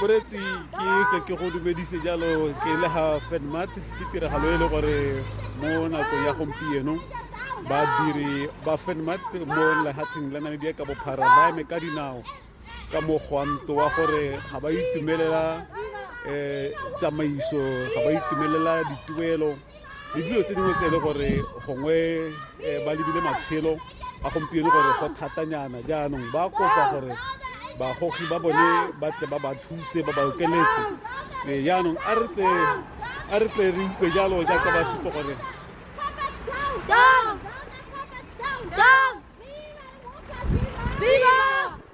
moretsi ke ke ke go dumedise jalo ke le ga fedmat ke tiragalo e le gore mo nakong ya gompieno badiri ba fedmat mo lehatsheng la namibia ka bophara ba eme ka dinao ka mogwanto wa gore ga ba itumelela um tsamaiso ga ba itumelela dituelo le dilo tse dingwe tse e le gore gongwe eh, ba lebile matshelo a gompieno gore go thatanyana jaanong ba kopa gore bagogi ba bone ba tle ba ba thuse ba ba okeletse eh, jaanong a re tle a re tle re utlwe jalo jaaka ba supa gore Down!